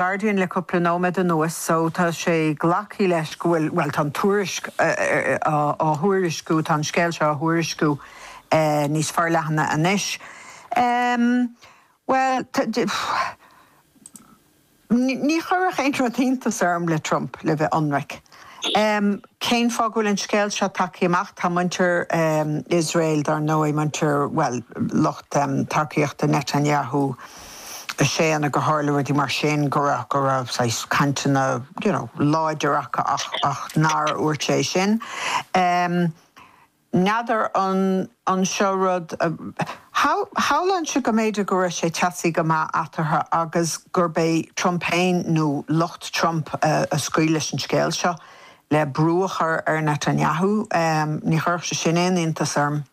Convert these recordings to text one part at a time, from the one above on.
Guardian le cúpla nóiméad anuas so tá sé glactha leis go bhfuil, bhuel tá an tuairisc á thuairisciú, tá an scéal seo á thuairisciú níos forleathana anois. Bhuel, ní chuirfeadh aon rud iontas orm le Trump, le bheith ionraic. Um cén fáth go bhfuil an scéal seo tagtha amach? Tá muintir um Iosrael dar ndóigh, muintir, bhuel, lucht um tacaíochta Netanyahu ag séanadh gur tharla rudaí mar sin, go raibh, go raibh saghas cainteanna, you know, láidir acu ach, ach nár dhúirt sé sin. Um. N'fheadar an an seo rud a shamhlóinnse go mb'fhéidir go raibh sé teasaí go maith eatarthu agus gurb é Trump féin nó lucht Trump a scaoil leis an scéal seo le brú a chur ar Netanyahu. Ní chuirfeadh sé sin aon iontas orm.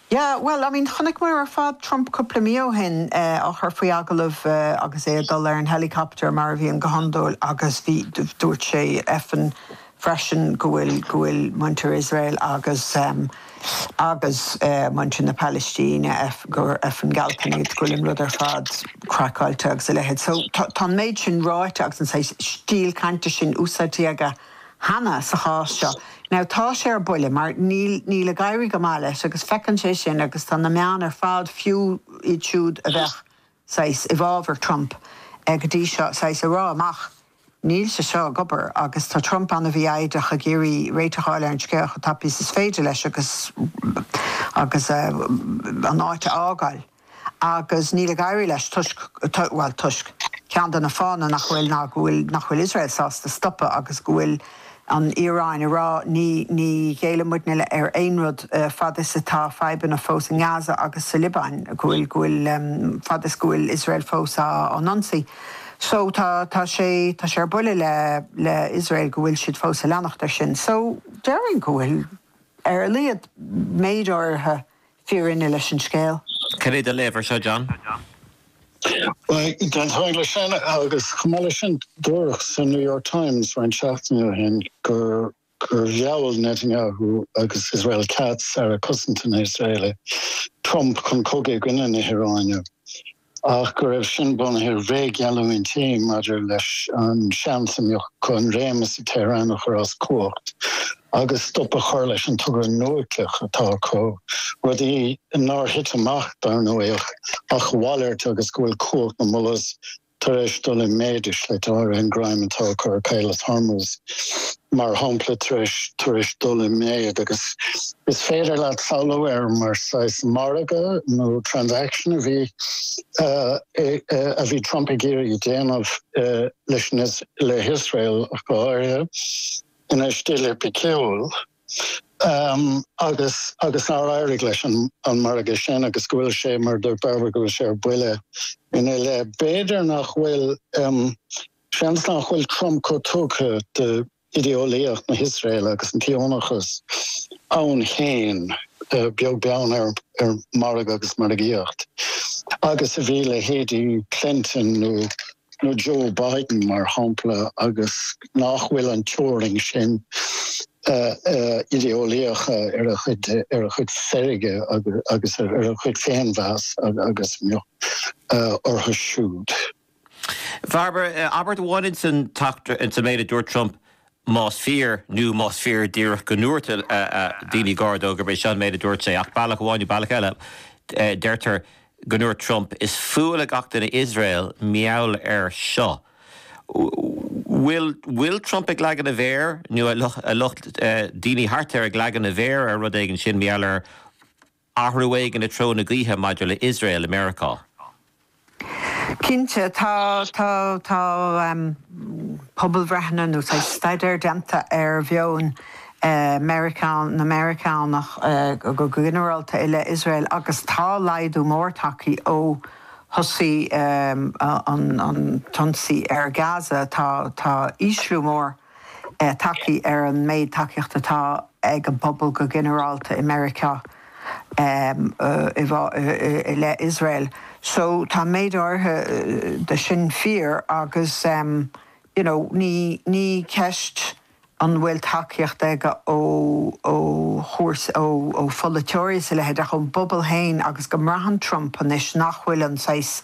Yeah, well, I mean, chonaic muid ar fad Trump cúpla mí ó shin á chur faoi agallamh agus é ag dul ar an helicopter, mar a bhíonn go hiondúil, agus bhí, dúirt sé effin' freisin go bhfuil, go bhfuil muintir Iosrael agus, agus muintir na Palaistíne, gur effin' gealtáin iad, go bhfuil an rud ar fad craiceáilte agus a leithéid. So, tá an méid sin ráite agus an saghas stíl cainte sin úsáidte aige. cheana, sa chás seo. Now tá sé ar buile mar níl, níl ag éirí go maith leis agus feiceann sé sin agus tá na meáin ar fad, fiú iad siúd a bheadh saghas i bhfábhar Trump go dtí seo, saghas ag rá ach níl sé seo ag obair agus tá Trump an-mhífhoighdeach ag iarraidh réiteach a fháil ar an scéal chomh tapaidh is is féidir leis agus, agus an áit a fhágáil. agus níl ag éirí leis toisc, bhuel, toisc, ceann de na fáthanna nach bhfuil ná go bhfuil, nach bhfuil Iosrael sásta stopadh agus go bhfuil an Iaráin ag rá, ní, ní ghéillfidh muidne le, ar aon rud fad is atá fadhbanna fós i nGaza agus sa Liobáin, go bhfuil, go bhfuil, fad is go bhfuil Iosrael fós á, á n-ionsaí. So, tá, tá sé, tá sé ar buile le, le Iosrael go bhfuil siad fós ag leanacht air sin. So, déarfainn go bhfuil, ar a laghad, méid áirithe fírinne leis an scéal. Cad é do léamh ar seo, John? D'aontóinn leis sin agus chomh maith leis sin dúradh sa New York Times roinnt seachtainí ó shin gur mheall Netanyahu agus Israel Katz, Aire Cosanta na nIosraelach, Trump chun cogaidh i gcoinne na hIaráine. ach go raibh sin bunaithe ar bhréag-gheallúintí maidir leis an seans a bheadh acu an réimeas sa Tehran a chur as cumhacht agus stop a chur leis an togra núicleach atá acu, rudaí nár thit amach, dar ndóigh, ach a mhalairt agus go bhfuil cumhacht na Mullahs tar éis dul i méid i slite áirithe, an greim atá acu ar Chaolas Hormuz. mar shampla, tar éis dul i méid, agus is féidir leat samhlú ar mar saghas margadh nó transaction a bhí a bhí Trump ag iarraidh a dhéanamh leis na le hIosrael ach go háirithe, ina stíl thipiciúil, agus agus nár éirigh leis an an margadh sin agus go bhfuil sé mar do go bhfuil sé ar buile ina leith. B'fhéidir nach bhfuil. Seans nach bhfuil Trump chomh tugtha d'idéolaíocht na hIosraeile agus an tSíónachas ann féin, beag beann ar mhargadh agus margaíocht, agus a bhí leithéidí Clinton nó Joe Biden, mar shampla, agus nach bhfuil an teorainn sin idéolaíochta ar a chuid feirge agus ar a chuid féinmheas agus a bheadh orthu siúd. Mar bhí abairt amháin ins an t-eachtra ins an méid a dúirt Trump, más fíor, nó más fíor díreach go ndúirt daoine gar dó gurb é seo an méid a dúirt sé, ach bealach amháin nó bealach eile deirtear go ndúirt Trump, is fuath le gach duine Iosrael mar gheall air seo. Bhfuil bhfuil Trump ag leagan a mhéar, nó a lucht, daoine thart air ag leagan a mhéar ar rud éigin, sin mar gheall ar. Athrú éigin i treo na gaoithe maidir le Iosrael i Meiriceá. Cinnte, tá pobalbhreitheanna nó staidéir déanta ar mheon na Meiriceánach go ginearálta i leith Iosrael agus tá laghdú mór tagtha ó thosaigh an t-ionsaí ar Gaza. Tá ísliú mór. tagtha ar an méid tacaíochta atá ag an bpobal go ginearálta i Meiriceá i leith Iosrael. So tá méid áirithe de sin fíor agus you know ní ceist an bhfuil tacaíocht ag ó chúrsaí, ó pholaiteoirí is a leithéid ach ón bpobal féin agus go mbraitheann Trump anois nach bhfuil an saghas,